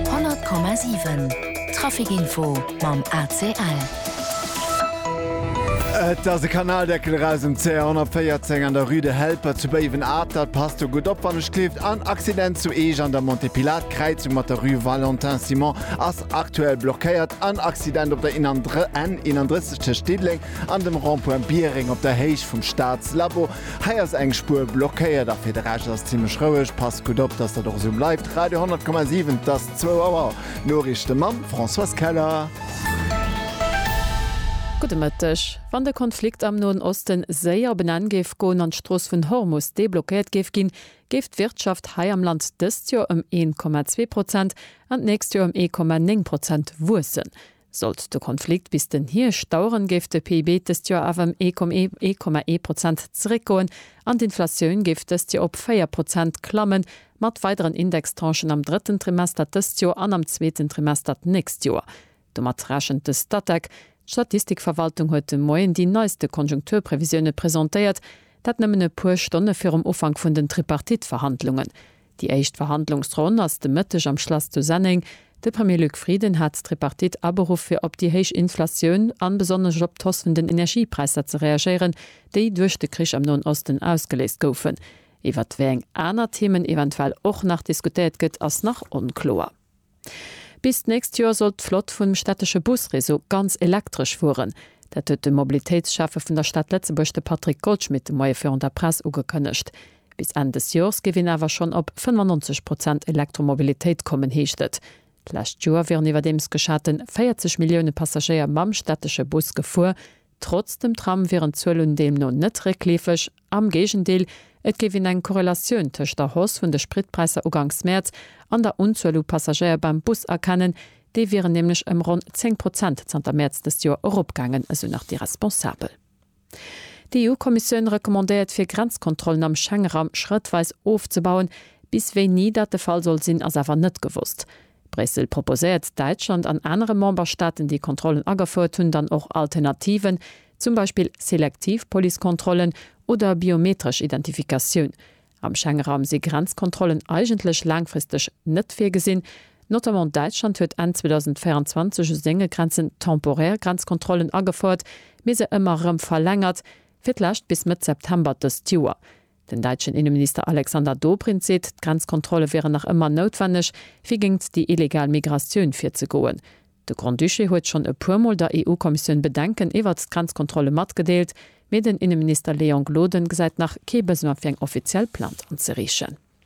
100,7 Trafic Info mam ACL. Et ass e Kanaldeckel eraus um CR 114 an der Rue de Helper zu Béiwen-Atert. Passt do gutt op wann e schleeft. En Accident zu Eech an der Montée Pilates Kräizung mat der Rue Valentin Simon ass aktuell blockéiert. En Accident op der N 31 tëscht Diddeleng an dem Rond-point Biereng op der Héicht vum Staatslabo. Hei ass eng Spuer blockéiert a fir de Rescht ass et zimlech roueg. Passt gutt op, dass dat och esou bleift. Radio 100,7, 't ass zwou Auer. D'Noriichte mam Françoise Keller. Gudde Mëtteg. Wann de Konflikt am Noen Osten séier op en Enn géif goen an d'Strooss vun Hormus deblockéiert géif ginn, géif d'Wirtschaft hei am Land dëst Joer ëm 1,2 Prozent an d'nächst Joer ëm 1,9 Prozent wuessen. Sollt de Konflikt bis den Hierscht daueren, géif de PIB dëst Joer awer ëm ee Komma ee Komma ee Prozent zeréckgoen an d'Inflatioun géif dëst Joer op véier Prozent klammen, mat weideren Indextranchen am drëtten Trimester dëst Joer an am zweeten Trimester d'nächst Joer. Domat rechent de Statec. D'Statistikverwaltung huet de Moien déi neiste Konjunkturprevisioune presentéiert, dat nëmmen e puer Stonne virum Ufank vun den Tripartite-Verhandlungen. Déi éischt Verhandlungsronn ass de Mëtteg am Schlass zu Senneng. De Premier Luc Frieden hat d'Tripartite aberuff fir op déi héich Inflatioun an besonnesch op d'Hoss vun den Energiepräisser ze reagéieren, déi duerch de Krich am Noen Osten ausgeléist goufen. Iwwert wéi eng aner Themen eventuell och nach diskutéiert gëtt, ass nach onkloer. Bis d'nächst Joer soll d'Flott vum städtesche Busreseau ganz elektresch fueren. Dat huet de Mobilitéitsschäffe vun der Stad Lëtzebuerg, de Patrick Goldschmidt, de Moie virun der Press ugekënnegt. Bis Enn des Joers géif een awer schonn op 95 Prozent Elektromobilitéit kommen, heescht et. D'lescht Joer wieren iwwerdeems geschaten 40 Millioune Passagéier mam städtesche Bus gefuer, Trotz dem Tram wieren d'Zuelen deemno net réckleefeg, am Géigendeel, et géif een eng Korrelatioun tëscht der Hausse vun de Spritpräisser uganks Mäerz an der Unzuel u Passagéier beim Bus erkennen, déi wieren nämlech ëm ronn 10 Prozent zanter Mäerz dëst Joer eropgaangen, esou nach déi Responsabel. D'EU-Kommissioun recommandéiert fir Grenzkontrollen am Schengeraum schrëttweis ofzebauen. Bis wéini dat de Fall soll sinn, ass awer net gewosst. Bréssel proposéiert Däitschland an anere Memberstaaten, déi Kontrollen agefouert hunn, dann och Alternativen, zum Beispill selektiv Policekontrollen oder biometresch Identifikatioun. Am Schengenraum si Grenzkontrollen eigentlech laangfristeg net virgesinn. Notamment Däitschland huet Enn 2024 u senge Grenzen temporär Grenzkontrollen agefouert, mee se ëmmer erëm verlängert, fir d'lescht bis Mëtt September dëst Joer. Den däitschen Inneminister Alexander Dobrindt seet, d'Grenzkontrolle wieren nach ëmmer noutwenneg, fir géingt déi illegal Migratioun virzegoen. De Grand-Duché huet schonn e puer Mol der EU-Kommissioun Bedenken iwwert d'Grenzkontrolle matgedeelt, mee den Inneminister Léon Gloden gesäit nach kee Besoin fir eng offiziell Plainte anzeriichen.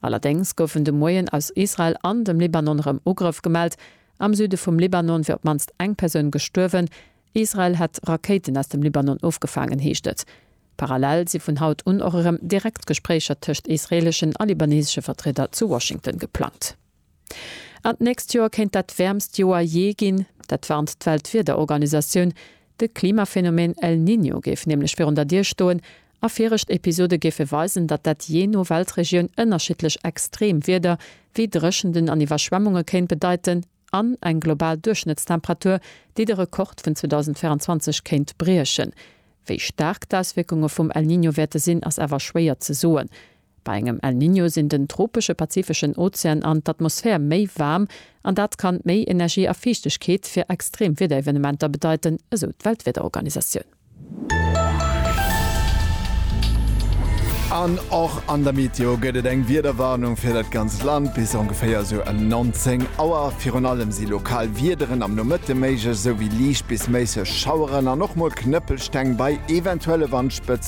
Allerdéngs goufen de Moien aus Israel an dem Libanon rëm Ugrëff gemellt. Am Süde vum Libanon wier op d'mannst eng Persoun gestuerwen. Israel hätt Rakéiten aus dem Libanon ofgefaangen, heescht et. Parallel si vun haut un och erëm direkt Gespréicher tëscht israeeleschen a libanesesche Vertrieder zu Washington geplangt. An d'nächst Joer kéint dat wäermst Joer jee ginn. Dat warnt d'Weltwiederorganisatioun. De Klimaphenomeen El Niño géif nämlech virun der Dier stoen a virecht Episode géife weisen, datt dat jee no Weltregioun ënnerschiddlech extreem Wieder wéi Dréchenten an Iwwerschwemmunge kéint bedeiten an eng global Duerchschnëttstemperatur, déi de Rekord vun 2024 kéint briechen. Wéi staark d'Auswierkunge vum El Niño wäerte sinn, ass awer schwéier ze soen. Bei engem El Niño sinn den tropesche pazifeschen Ozean an d'Atmosphär méi waarm an dat kann méi Energie a Fiichtegkeet fir extrem Wiederevenementer bedeiten, esou d'Weltwiederorganisatioun. An och an der Meteo gëtt et eng Wiederwarnung fir dat ganzt Land bis ongeféier esou ëm 19 Auer. Virun allem si lokal Wiederen am Nomëtte méiglech, esou wéi liicht bis méisseg Schaueren an och mol Knëppelsteng bei eventuelle Wandspëtzen.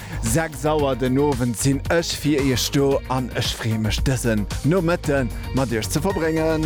6 Auer den Owend sin ech fir iech do an ech free mech dësen Nomëtten mat iech ze verbréngen.